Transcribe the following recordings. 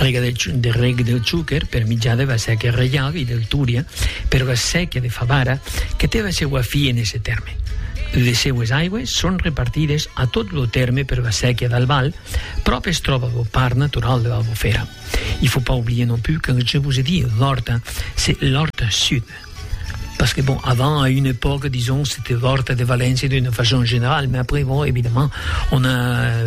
Rega de reg del chuquer per mitjà de va séquia reial i del túria per va séquia de Favara que té va seua fi en esse tèrme. Les seues aigües son repartides a tot lo tèrme per va séquia d'Albal, pròp es tròba lo parc natural de Albufera. I fo pas oublier non plus quand je vous ai dit l'Horta, c'est l'Horta Sud. Parce que bon, avant, à une époque, disons, c'était l'Horta de Valence d'une façon générale, mais après, bon, évidemment, on a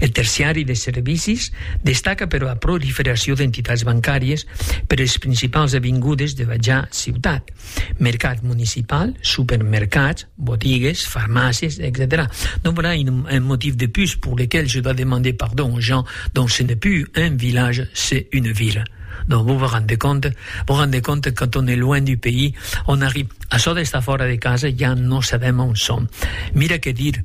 Eth terciari de servicis destaca per ua proliferacion d'entitats bancàries per es principals avingudes dera ja ciutat, mercat municipal, supermercats, botigues, farmàcies, etcetèra Donc voilà un motiu de plus pour lequel je dois demander pardon aux gens, donc ce n'est plus un village, c'est une ville. Donc vos vous rendez compte? Vous rendez compte que quand on est loin du pays, on arrive, açò d'estar fòra de casa ja non sabem a on som. Mira que dir